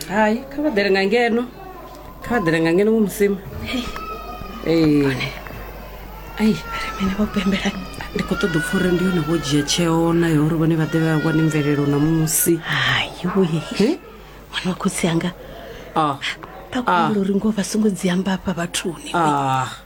hayi kha vha ḓele nga ngeno kha vha ḓele nga ngeno musima ai mene vho pembela ndi khou ṱoḓa upfa uri ndi yone vho dzhia tsheo nayo uri vhone vha ḓevhe vha wane mvelelo na musi haiwe ṅwana wa khotsi anga ah. ah. takulo uri ngo vha songo dzi amba afha vhathuni ah.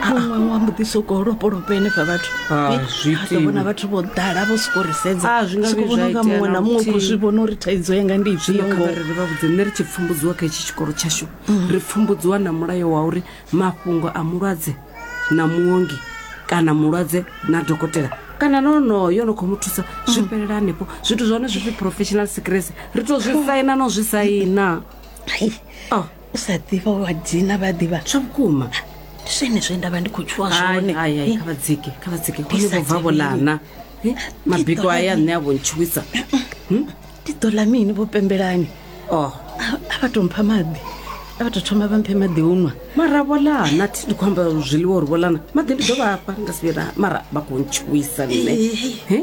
muṅwe wa mbo ḓi sokou lopolopa henefha vhathu Ah, Eh, zwi a ḓo vhona itiwi. vhathu vho ḓala vho sokou ri sedza Ah, zwi nga Sokou vhuya vhona zwa unga itea muṅwe na na muṅwe u khou luthihi. zwi vhona uri thaidzo yanga ndi zwino ifhio kha ngoho vharere vha vhudze nṋe ri tshi pfumbudziwa kha itshi tshikolo tshashu ri pfumbudziwa na mulayo wa uri mafhungo a mulwadze na muongi kana mulwadze na dokotela kana na onoyo no khou mu thusa zwi fhelela hanefho zwithu zwa hone zwi pfi professional secrets ri to zwi saina no zwi saina Ai, Oh. u sa ḓivha wa dzina vha ḓivha zwa vhukuma ndi zwene zwe nda vha ndi khou tshuwa zwone Eh, kha vha dzike kha vha dzike Ndi hone sa vho bva vho tevheli. lana Eh, ndi mabiko ḓo aya ḽa nṋe a vho ntshuwisa mini? ndi ḓo ḽa mini vho pembelani o a a vha tou mpha maḓi a vha tou thoma vha mphe maḓi o nwa mara vho lana thi ndi khou amba zwiḽiwa uri vho lana maḓi ndi ḓo vhafha nga sivhira mara vha khou ntshuwisa nṋe Eh. Eh?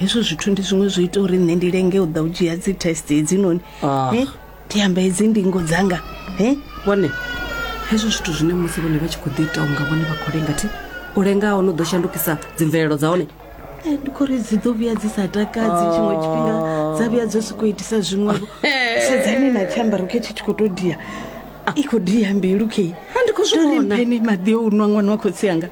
hezwo zwithu ndi zwiṅwe zwo ita uri nṋe ndi lenge u ḓa u dzhia dzi test hedzinoni Ah. Eh, ndi amba hedzi ndingo dzanga Eh, vhone hezwo zwithu zwine musi vhone vha tshi khou ḓi ita unga vhone vha khou lenga thi u lenga hone u ḓo shandukisa dzimvelelo dza hone eh, ndi khori dzi ḓo vhuya dzi sa takadzi tshiṅwe tshifhinga dza vhuya dzo sokou itisa zwiṅwevho sedzani na tshiambaro khe tshi tshi khou tou dia i khou dia mbilu khe Ha, ndi khou zwi vhona. mpene maḓi o u nwa ṅwana wa khotsi anga